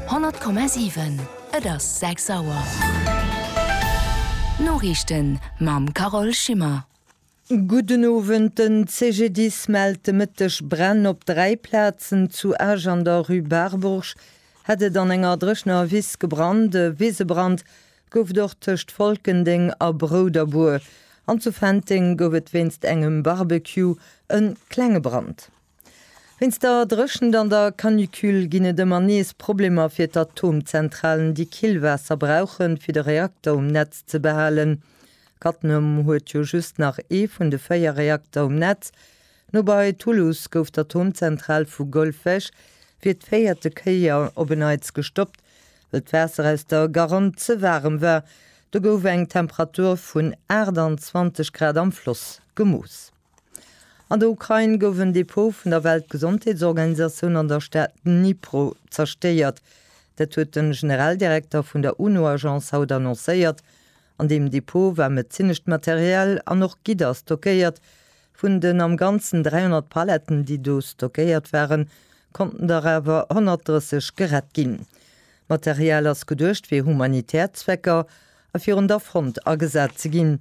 100,7 Et ass 6 Auer. D'Noriichten mam Carole Schimmer. Gudden Owend, Den CGDIS mellt de Mëtteg Bränn op dräi Plazen. Zu Esch an der Rue Barbourg hätt et an enger dréchener Wiss gebrannt. E Wisebrand gouf et och tëscht Folkendeng a Brouderbur. An zu Fenteng gouf et wéinst engem Barbecue e klenge Brand. Wéinst der Dréchent an der Canicule ginn et ëmmer nees Problemer fir d'Atomzentralen, déi Killwaasser brauchen, fir de Reakter um Netz ze behalen. Cattenom huet jo just nach ee vun de véier Reakter um Netz. No bei Toulouse gouf d'Atomzentral vu Golfech fir d'véierte Kéier op en Neits gestoppt, well d'Waasser aus der Garonne ze waarem war. Do gouf eng Temperatur vun 28 Grad am Floss gemooss. An der Ukrain gouf en Depot vun der Weltgesondheetsorganisatioun an der Stad Dnipro zerstéiert. Dat huet de Generaldirekter vun der UNO-Agence haut annoncéiert. An deem Depot war medezinescht Material an och Gidder stockéiert. Vun den am Ganzen 300 Paletten, déi do stockéiert waren, konnten der awer 130 gerett ginn. D'Material ass geduecht fir humanitär Zwecker a virun der Front agesat ze ginn.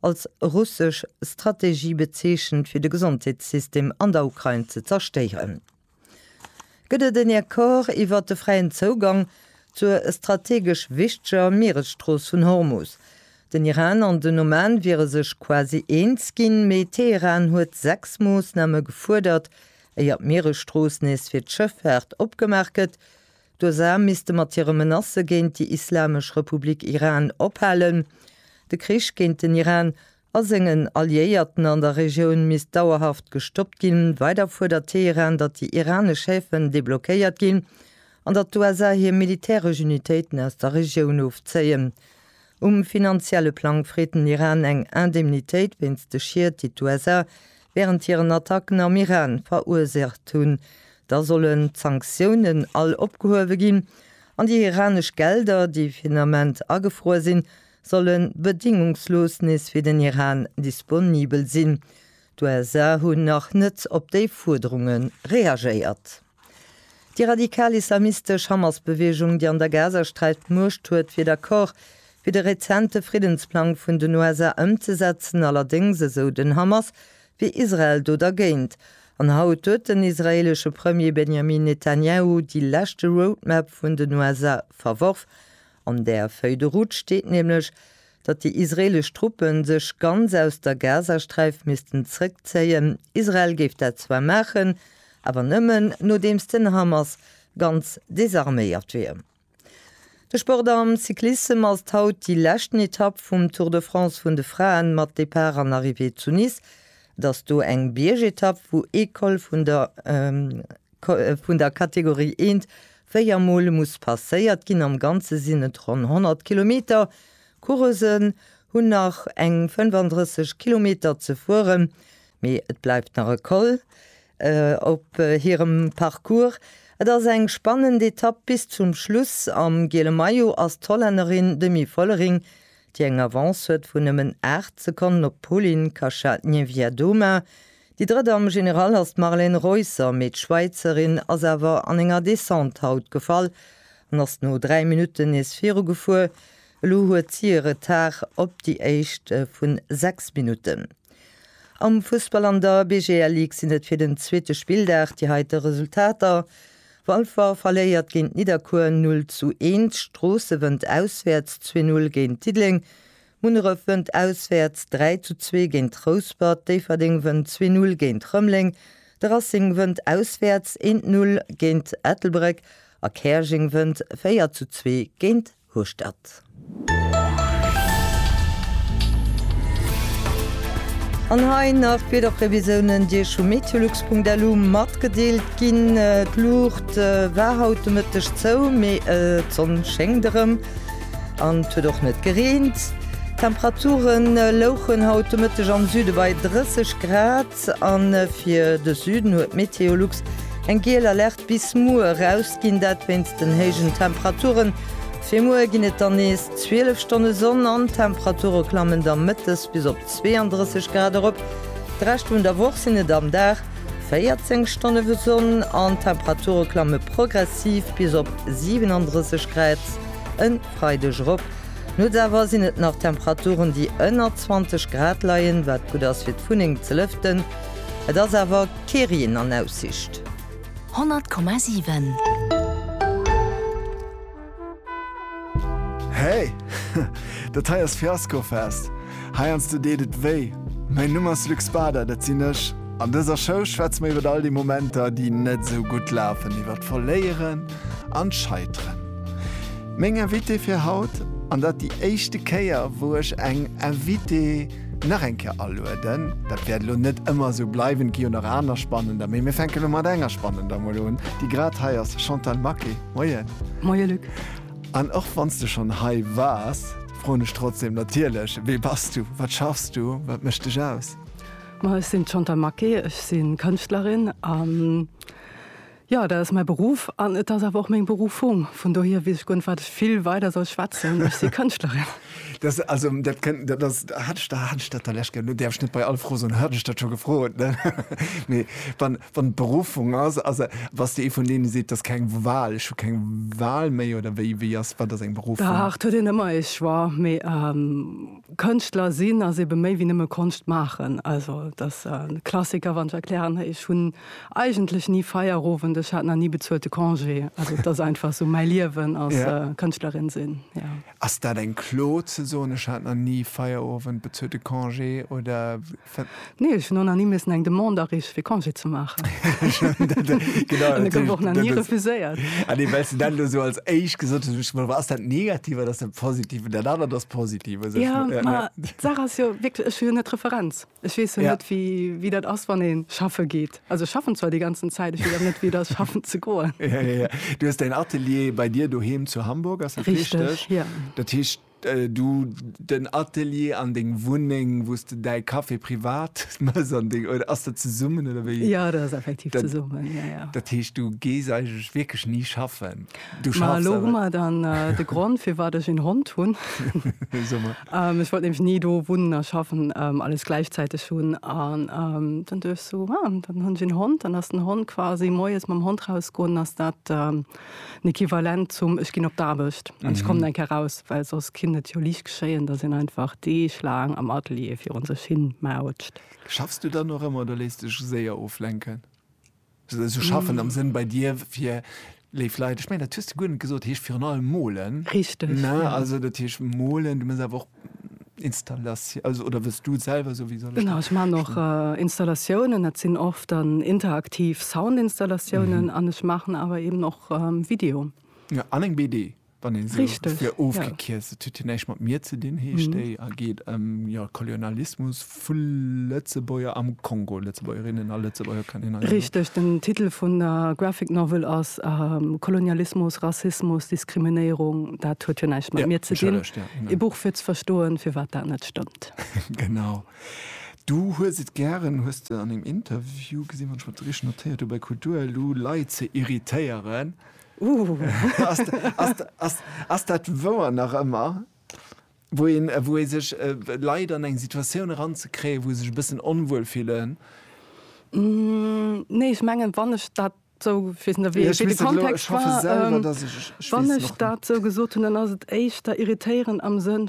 als russesch Strategie bezeechent, fir de Gesondheetssystem an der Ukrain ze zerstéieren. Gëtt et en Accord iwwert de fräien Zougang zur strategesch wichteger Mieresstrooss vun Hormus? Den Iran an den Oman wiere sech quasi eens ginn, mee Teheran huet sechs Moossname gefuerdert, éier d'Mieresstrooss nees fir d'Schëffaart opgemaach gëtt. D'USA misste mat hire Menacë géint déi Islamesch Republik Iran ophalen. De Krich géint den Iran a sengen Alliéierten an der Regioun misst dauerhaft gestoppt ginn. Weider fuerdert Teheran, datt déi iranesch Häfen deblockéiert ginn an datt d'USA hir militäresch Unitéiten aus der Regioun ofzéien. Um finanzielle Plang freet den Iran eng Indemnitéit wéinst de Schied, déi d'USA wärend hiren Attacken am Iran verursaacht hunn. Da sollen d'Sanktiounen all opgehuewe ginn an déi iranesch Gelder, déi fir den Ament agefruer sinn, solle bedéngungslos nees fir den Iran disponibel sinn. D'USA hunn nach net op déi Fuerderunge reagéiert. Déi radikal islamistesch Hamas-Beweegung, déi an der Gazasträif d'Muecht huet, wier d'Accorde fir de rezente Friddensplang vun den USA ëmzesetzen. Allerdéngs, esou den Hamas, wier Israel do dergéint. An haut huet den israeelesche Premier Benjamin Netanjahu déi leschte Roadmap vun den USA verworf. An där Feuille de route steet nämlech, datt déi israeelesch Truppe sech ganz aus der Gazasträif missten zrëckzéien. Israel géif dat zwar maachen, awer nëmmen nodeems den Hamas ganz desarméiert wier. De Sport am Cyclissem ass haut déi leschten Etapp vum Tour de France vun de Fraen mat Depart an Arrivée zu Nice. Et ass do eng Biergetapp wou ee Col vun der vun der Kategorie I Véier Mol muss passéiert ginn. Am Ganze sinn et ronn 100 Kilometer. D'Coureusen hunn nach eng 35 Kilometer ze fueren, mee et bleift nach e Col op hirem Parcours. Et ass eng spannend Etapp bis zum Schluss. Am giele Maillot ass d'Hollännerin Demi Vollering, déi eng Avance huet vun nëmmen 8 Sekonnen op d'Polin Kacha-Niewiadoma. Déi drëtt am General ass d'Marlène Reusser, mee d'Schwäizerin ass awer an enger Descente haut gefall an ass no 3 Minutten nees virugefuer. Elo huet si e Retard op déi éischt vun 6 Minutten. Am Fussball an der BGL Ligue sinn et fir den zweete Spilldag déi heite Resultater, Walfer verléiert géint Nidderkuer 0 zu 1, Stroosse wënnt auswäerts 2-0 géint Diddeleng, Munneref wënnt auswäerts 3 zu 2 géint Rouspert, Déifferdeng wënnt 2 Null géint Rëmleng, de Racing wënnt auswäerts 1 Null géint Ettelbréck a Käerjeng wënnt 4 zu 2 géint Hueschtert. An hei nach d'Wiederprevisiounen, déi Iech vu meteolux.lu matgedeelt ginn. D'Luucht war haut de Mëtteg zou, mee d'Sonn schéngt erëm. An et huet och net gereent. D'Temperature louchen haut de Mëtteg am Süde bei 30 Grad a fir de Süden huet Meteolux eng giel Alerte bis muer erausginn, dat wéinst den héijen Temperaturen. Fir muer ginn et dann nees 12 Stonne Sonn an d'Temperature klammen da mëttes bis op 32 Grad erop. De Rescht vun der Woch sinn et am Dag 14 Stonne Sonn an d'Temperature klamme progressiv bis op 37 Grad. En Freideg erop. Nuets awer sinn et nach Temperaturen déi ënner 20 Grad leien, wat gutt ass fir d'Wunneng ze lëften. Et ass awer kee Reen an Aussicht. 100,7. Hey! Dat hei ass Fiaskofest! Heiansdo deet et wéi. Mäin Numm ass Luc Spada, dat sinn ech. An dëser Show schwätze mer iwwer all déi Momenter, déi net esou gutt lafen, iwwer d'Verléieren, an d'Scheiteren. Meng Invitée fir haut, an dat déi éischte Kéier wou ech eng Invitée nach eng Kéier alueden, dat wäert elo net ëmmer esou bleiwen, et gi jo nach aner spannender, mee mir fänken elo mat enger spannender mol un, déi grad hei ass, Chantal Maquet, Moien. Moien Luc. An och wann s de schonn hei waars, froen ech trotzdeem natierlech, Wie bass du? Wat schaffs du? Wat mécht dech aus? Ma ech sinn d'Chantal Maquet, ech si Kënschtlerin an. Jo, dat ass mäi Beruff an et ass awer och meng Beruffung. Vun dohier weess ech guer net, wat ech vill weider soll schwätzen. Ech si Kënschtlerin. Dat, also, dat kënnt, dat ass, hat ech dat, hat ech dat der Lescht geu, elo däerf ech net bei all Fro soen, hat ech dat scho gefrot, ne? Mee wann, wann et d'Beruffung ass, ass e, bass de ee vun deene seet, 't ass keng Wahl, ech hu keng Wahl méi oder wéi, wéi ass, wat ass eng Beruffung? Dach, 't huet een ëmmer ee Choix, mee Kënschtler sinn ass eebe méi wéi nëmme Konscht maachen. Also, 't ass e Klassiker, wann ech erklären, ech hunn. Eigentlech ni Feierowend, ech hat nach ni bezuelte Congé. Also et ass einfach esou mäi Liewen als Kënschtlerin sinn, jo. Ass dat eng Klo ze soen, ech hat nach ni Feierowend, bezuelte Congé oder? Nee, ech hunn och nach ni missen eng Demande areeche fir Congé ze maachen. An e gouf och nach ni refuséiert. Ah nee, well s de dat elo esou als éischt gesot hues, hunn ech gemengt, ass dat negativ oder ass dat positiv? Mä dat anert ass positiv. Jo, mä d'Saach ass jo wierklech, ech hu jo net d'Referenz. Ech weess jo net wéi dat ass wann ee schaffe geet. Also ech schaffen zwar déi ganzen Zäit, ech weess awer net wéi et ass schaffen ze goen. Du hues däin Atelier bei dir doheem zu Hamburg, ass dat richteg? Dat heescht du den Atelier an deng Wunneng, wou s de däi Café privat mëss an deng oder ass dat zesummen oder wéi? Jo dat ass effektiv zesummen. Dat heescht du gees eigentlech wierklech ni schaffen? Ma elo hu mer dann de Grond, firwat ech een Hond hunn. Ech wollt nämlech ni do wunnen a schaffen, alles gläichzäiteg hunn. An dann duecht ech sou, ah, dann hunn ech een Hond. Dann ass den Hond quasi moies mam Hond rausgoen, ass dat den Equivalent zum ech ginn op d'Aarbecht an ech kommen eng Kéier raus. Well soss kinnt et jo liicht geschéien, datt een einfach deeglaang am Atelier virun sech hin mautscht. Schaffs du dann och ëmmer oder léiss dech séier oflenken? Sou schaffen am Sënn bei dir fir léif Leit. Ech mengen dat hues de guer net gesot, heescht virun allem molen. Richteg, ne? Ja. Also dat heescht molen, du muss awer och Installatio-, also oder wëlls du selwer esou, wéi soll ech dat. Genau, ech man och Installatiounen, dat sinn oft dann interaktiv Soundinstallatiounen an ech maachen awer eben och Video. Ja, an eng BD Wann een se fir ofgekierzt, et huet jo näischt mat mir ze dinn, heescht déi a geet ëm Kolonialismus vu Lëtzebuerger am Kongo, Lëtzebuergerinnen a Lëtzebuerger kann een. Richteg, den Titel vun der Graphic Novel ass Kolonialismus, Rassismus, Diskriminéierung. Dat huet jo näischt mat mir ze dinn. E Buch fir ze verstoen, firwat dat net stëmmt. Genau. Du hues et gären, hues de an engem Interview gesinn, wann ech mer dat richteg notéiert hu bei Kultur elo, Leit ze irritéieren. Ass dat wouer nach ëmmer? Wou een, wou ee sech, Leit an eng Situatioun eranzekréien, wou se sech e bëssen onwuel fillen? Nee, ech mengen, wann ech dat esou, ech weess net, wéi de Kontext war, wann ech dat esou gesot hunn, dann ass et éischter irritéieren am Sënn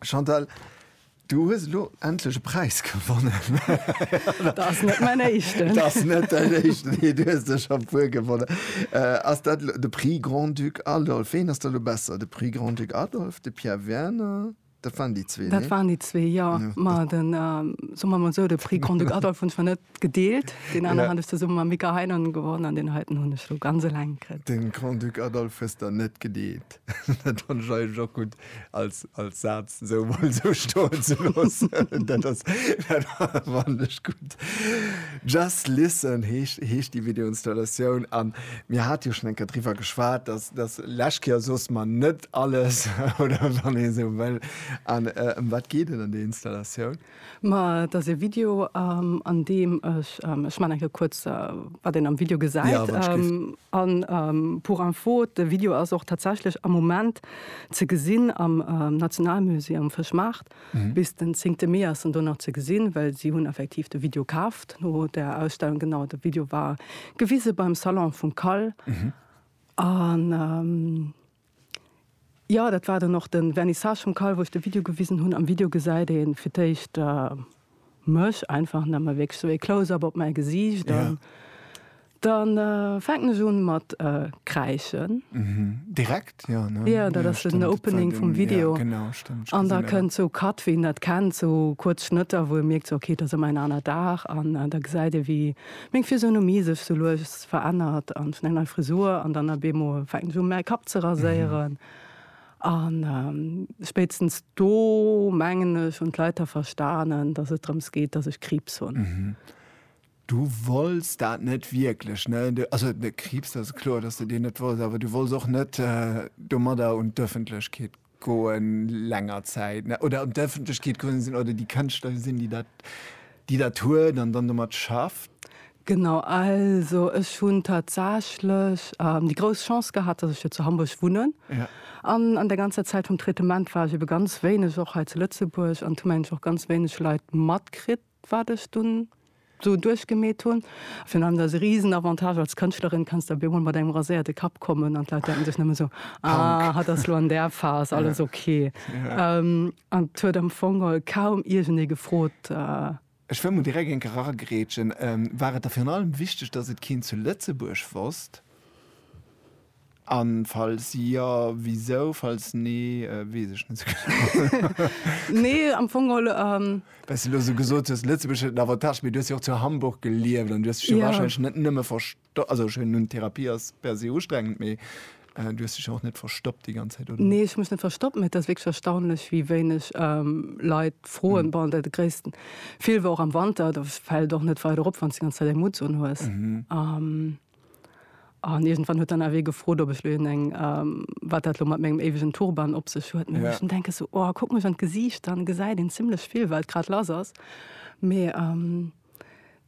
Chantal, du hues elo endlech e Präis gewonnen. Dat ass net mäin éischten. Dat ass net däin éischten, nee, du hues der scho e puer gewonnen. Ass dat elo de Prix Grand-Duc Adolphe? Ween ass da elo besser, de Prix Grand-Duc Adolphe, de Pierre Werner? Dat waren déi zwee, nee? Dat waren déi zwee, jo. Ma den, soe mer emol esou, de Prix Grand-Duc Adolphe hunn ech mer net gedeelt. Deen aneren hat ech zesumme mam Mika Heinonen gewonnen an deen heiten hunn ech elo ganz eleng kritt. De Grand-Duc Adolphe hues der net gedeelt. Dat fannen ech eigentlech och gutt als als Saz esou emol esou stoen ze loossen. Dat ass dat fannen ech gutt. Just Listen heescht heescht déi Videoinstallatioun an mir hate jo schonn eng Kéier driwwer geschwat, dass dass lech Kéier soss mer net alles oder wann ee esou wëll. An ëm wat geet et an där Installatioun? Ma et ass e Video an deem ech, ech man enke kuerz wat een am Video gesäit an pour info de Video ass och tatsächlech am Moment ze gesinn am Nationalmusée am Fëschmaart bis den zéngte Mee ass en do nach ze gesinn, well si hunn effektiv de Video kaaft no der Ausstellung. Genau de Video war gewise beim Salon vum Kal an. Jo dat war dann och den Vernissage vum Call wou ech de Video gewisen hunn. Am Video gesäit een fir d'éischt mech einfach an da man wierklech sou ee Close up op mäi Gesiicht an dann fänken ech un mat kräischen. Direkt jo ne? Jo dat ass den Opening vum Video an da kënnt sou Cut wéi een dat kennt sou kuerz Schnëtter wou ee mierkt sou ok et ass ëmmer en aner Dag an da gesäit ee wéi Meng Physionomie sech sou lues verännert an hunn eng nei Frisur an dann ab eemol fänken ech u mäi Kapp ze raséieren an spéitstens do mengen ech hunn d'Leit da verstanen, dass et drëms geet, dass ech Kriibs hunn. Du wolls dat net wierklech, ne? Also Kriibs, dat ass kloer, dass de deen net wolls, awer du wolls och net domadder un d'Ëffentlechkeet Goen länger Zäit ne oder an d'Ëffentlechkeet komm sinn oder déi Kënschtler sinn, déi dat, déi dat huet an dann domat schafft? Genau, also ech hunn tatsächlech déi grouss Chance gehat, datt ech jo zu Hamburg wunnen. Ja. An an der ganzer Zäit vum Traitement war ech ebe ganz wéineg och hei zu Lëtzebuerg an hu mengen ech och ganz wéineg Leit matkritt. wat ech dunn esou duerchgemeet hunn. Virun allem ass e risen Avantage als Kënschtlerin, kanns de op eemol mat engem raséierte Kapp kommen an d'Leit denken sech nëmme esou, ah, hatt ass elo an där Phas, alles ok. An et huet am Fong kaum iergendee gefrot. Ech wëll mol direkt eng Kéier eragrätschen, War et der virun allem wichteg, datt et keen zu Lëtzebuerg wosst? An falls jo, wisou? Falls nee, wees ech net sou genau. Nee, am Fong geholl. Well s de elo sou gesot hues, Lëtzebuerg huet en Avantage, mee du hues jo och zu Hamburg gelieft an du hues dech jo warscheinlech net nëmme verstoppt, also ech hunn Therapie ass per se ustrengend, mee du hues dech jo och net verstoppt déi ganz Zäit, oder? Nee, ech hu mech net verstoppt, mee et ass wierklech erstaunlech, wéi wéineg Leit froen. Bon, de gréissten Feel war och am Wanter, do fält et och net weider op, wann s de déi ganz Zäit eng Mutts unhues. An iergendwann huet dann awer ee gefrot, ob ech lo een eng, wat dat lo mat mengem éiwegen Turban op sech huet. Mee ech muss denken, sou, oh, kuck mech an d'Gesiicht, dann gesäit een zimlech vill, wat grad lass ass. Mee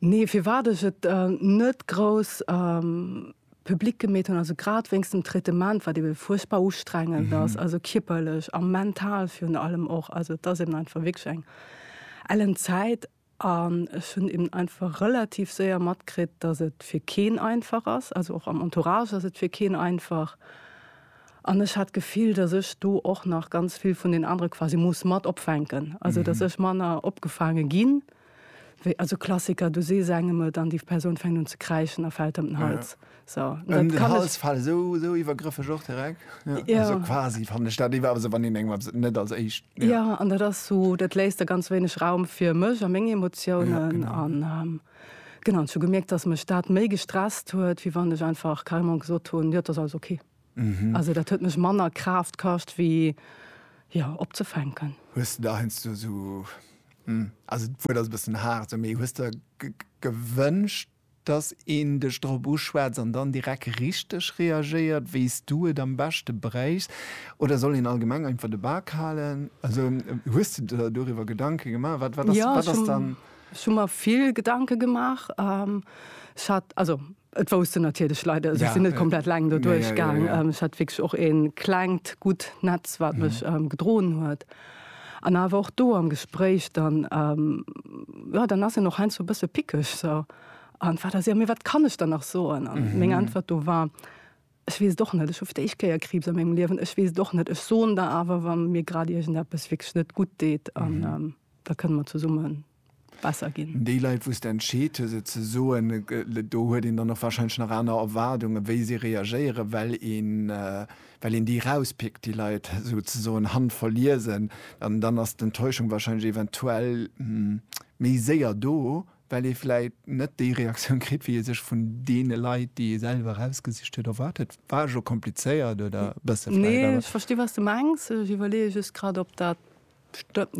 nee, firwat ech et net grouss public gemeet hunn, also grad wéinst dem Traitement, wat ebe fuerchtbar ustrengend ass, also kierperlech a mental virun allem och. Also et ass eben einfach wierklech eng ellen Zäit. An ech hunn eben einfach relativ séier matkritt, dass et fir keen einfach ass, also och am Entourage ass et fir keen einfach. An ech hat d'Gefill, dass ech do och nach ganz vill vun den anere quasi muss mat opfänken, also dass ech manner opgefaange ginn, wéi, also Klassiker, du sees engem et an déi Persoun fänkt un ze kräischen a fält ëm den Hals. So, an den Hals fallen, so, so iwwergrëffeg och direkt. Ja. Ja. Also quasi fand ich dat iwwer se wann den engem net als éischt. Ja. ja, an dat ass so, dat léist der ganz wéineg Raum fir mech a meng Emotiounen ja, genau. an. Ähm, Genau zu gemerkt, dass mech dat méi gestresst huet, wie wann ech einfach Kalmon gesot hun ja, das alles okay. Mhm. Also dat huet mech manner Kraft kascht wie ja opzefänken. Hues du da hest du so hm, also wo das bessen hart so méi hues der gewünscht Dass een dech drop uschwätzt an dann direkt richteg reagéiert, wéi s du et am beschte bréichs. Oder soll een allgemeng einfach de Bak halen? Also, hues de der doriwwer Gedanke gemaach? Wat, wat ass, wat ass dann. Jo, ech hu mer vill Gedanke gemaach. Ech hat, also et wousst en natierlech Leit, also ech sinn net komplett eleng do duerchgaang. Ech hat wierklech och e klengt, gutt Netz, wat mech gedroen huet. An awer och do am Gespréich, dann, jo, dann ass en och heiansdo e bësse pickeg, so, an wat ass ierm, mee wat kann ech der nach soen? An meng Äntwert do war, Ech weess et och net, ech hu fir d'éischt Kéier Kriibs a mengem Liewen, ech weess et och net, ech soen der awer, wa mir grad iergendeppes wierklech net gutt deet, an da kënne mer zesummen besser ginn. Déi Leit, wou s de entscheet hues, et ze soen, do huet een dann och warscheinlech nach aner Erwaardungen, wéi si reagéieren, well een, well een déi erauspickt, déi Leit souzesoen handverliesen. An dann ass d'Enttäuschung warscheinlech eventuell méi séier do, well ee vläicht net déi Reaktioun kritt, wéi ee sech vun deene Leit, déi ee selwer erausgesicht huet, erwaart huet. War ech och komplizéiert oder e bësse vläicht? Nee, ech versti wat s de mengs. Ech iwwerleeë just grad, ob dat.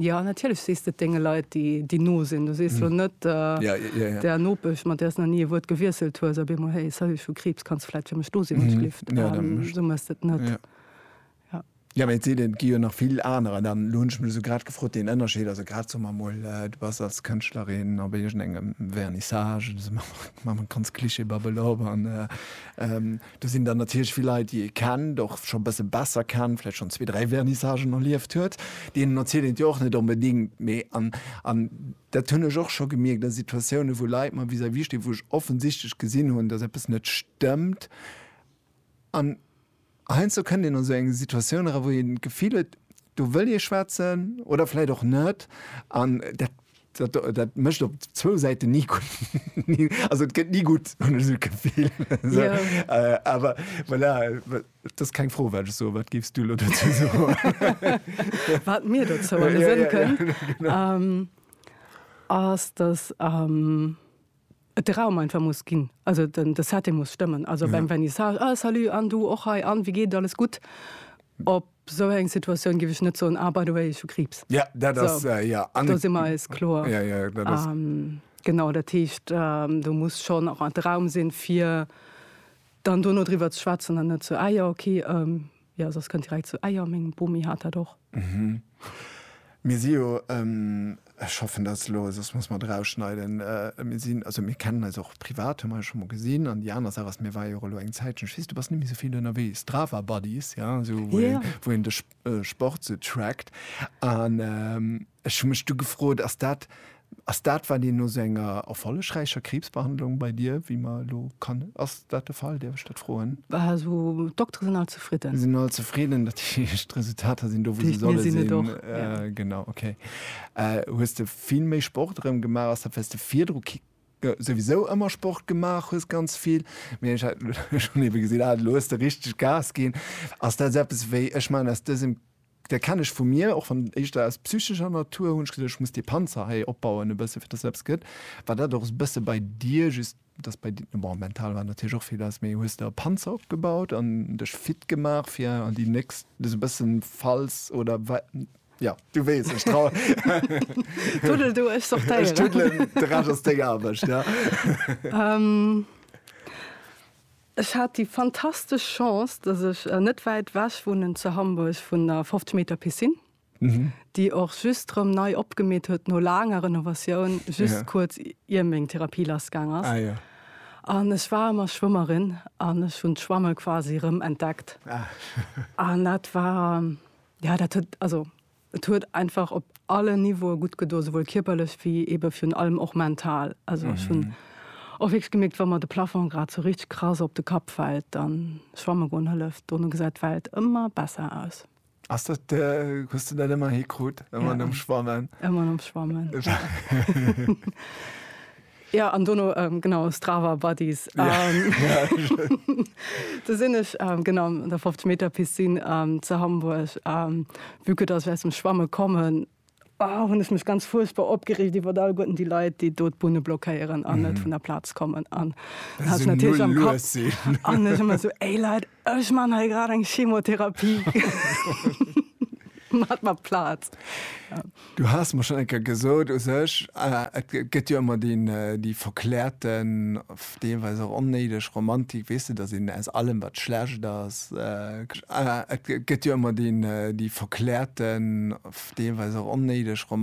Jo, natierlech sees de et denge Leit, déi no sinn. Du sees elo net der Nopesch, mat där s nach ni e Wuert gewiesselt hues, op eemol, Hey, salut, ech hu Kriibs, kanns fläit fir mech do sinn, wann s du lift. Esou méchs de et net. Jo, mä et seet een, et gi jo nach vill anerer. Elo hunn ech mech esou grad gefrot, deen Ënnerscheed, also grad, soe mer emol, du bass als Kënschtlerin op iergendengem Vernissage, ech soe emol, maache mer ganz klischeebabbel op, an Do sinn dann natierlech vill Leit, déi ee kennt, och scho e bësse besser kennt, vläicht schonn zwee, dräi Vernissagen erlieft huet. Deenen erzielt een et jo och net onbedéngt. Mee, an, an dat hunn ech och scho gemierkt a Situatiounen, wou Leit mer vis-à-vis stinn, wou ech offensichtlech gesinn hunn, datt eppes net stëmmt. An heiansdo kënnt een an esou eng Situatioun era, wou een d'Gefill huet, do wëll ee schwätzen oder vläicht och net. An dat. Dat, dat mécht op zwou Säiten ni gutt. Also et gëtt ni gutt, hunn ech esou d'Gefill. Esou, yeah. Awer voilà, et ass keng Fro, wat ech soen. Wat géifs du elo dozou soen? Wat mir dozou alles sënn kënn, ass, datt am. et de Raum einfach muss ginn, also den de Setting muss stëmmen, also beim Vernissage, ah salut an du och hei an wéi geet et, alles gutt? Op esou eng Situatioun géif ech net soen, ah by the way ech hu Kriibs. Ja, dat ass, ja, an et. Do si mer eis kloer. Ja, ja, dat ass. Genau, dat heescht, do muss schonn och de Raum sinn, fir dann dono driwwer ze schwätzen an net sou, ah jo, okay, Jo, soss kënnt direkt zu Eier. Meng Bomi hat dat och. Mhm. Mir si jo, ech hoffen, dat ass elo, soss muss mer et erausschneiden, mir sinn, also mir kennen eis och privat, hu mer eis scho mol gesinn. An déi aner Saach ass, mir ware jo och elo eng Zäitchen, ech weess, du bass net méi esou vill ënnerwee, Strava Buddies, jo, esou wou een, wou een de Sport esou trackt. An Ech hu mech du gefrot, ass dat ass dat, wat een no sou enger erfollegräicher Kriibsbehandlung bei dir, wéi mer elo kann, ass dat de Fall? Däerf ech dat froen? Also d'Doktere sinn all zefridden. Sinn all zefridden, dat heescht d'Resultater sinn do, wou se solle sinn. Genau, okay. Hues de vill méi Sport erëm gemaach? Ass dat, well s de virdru souwisou ëmmer Sport gemaach hues, ganz vill, mee ech hat elo schonn ebe gesinn, ah elo hues de richteg Gas ginn. Ass dat eppes wéi, ech maachen aus dësem Dei kenn ech vu mir, och wann éischter aus psychescher Natur, hun ech gesot ech muss dee Panzer hei opbauen e bësse fir dass eppes gëtt, war dat och e bësse bei dir, just dass bei dir, bon mental war natierlech och vill lass, mee hues de e Panzer opgebaut an dech fit gemaach fir an déi nächst, sou bëssen falls oder wa, jo du weess ech trau. Tuddel du, ech sortéieren. Ech tuddelen, de Rescht ass deng Aarbecht, ja. Ech hat déi fantastesch Chance, dass ech net wäit wech wunnen zu Hamburg vun der 50 Meter Piscine, déi och just rëm nei opgemeet huet no laanger Renovatioun, just kuerz ier meng Therapie lassgaang ass. An ech war ëmmer Schwëmmerin an ech hunn d'Schwamme quasi rëm entdeckt. An dat war, jo, dat huet, also Et huet einfach op allen Niveaue gutt gedoen, souwuel kierperlech wéi eebe virun allem och mental. Also ech hunn och wierklech gemierkt, wa mer de Plafong grad esou richteg krass op de Kapp fält, da schwamme goen hëlleft. Dono gesäit d'Welt ëmmer besser aus. Ass dat, hues de dat ëmmer hikrut? Ëmmer nom Schwammen? Ëmmer nom Schwammen. Ja an dono genau Strava Buddies do sinn ech genau an der 50 Meter Piscine ze Hamburg vu que dass ech aus dem Schwamme kommen hunn ech mech ganz fuerchtbar opgereegt iwwer all Goeten déi Leit, déi do d'Bunne blockéieren an net vun der Plaz kommen an hat natierlech am Kapp an ech ëmmer esou, Ey Leit, Ech man hei grad eng Chemotherapie mat mat Plaz. Du has mer schon enker gesot u sech et gëtt jo ëmmer deen déi verklärten deelweis och onnéideg Romantik, weess de, datt een aus allem wat schlecht ass et gëtt jo ëmmer deen déi verklärten deelweis och onnéideg Romantik.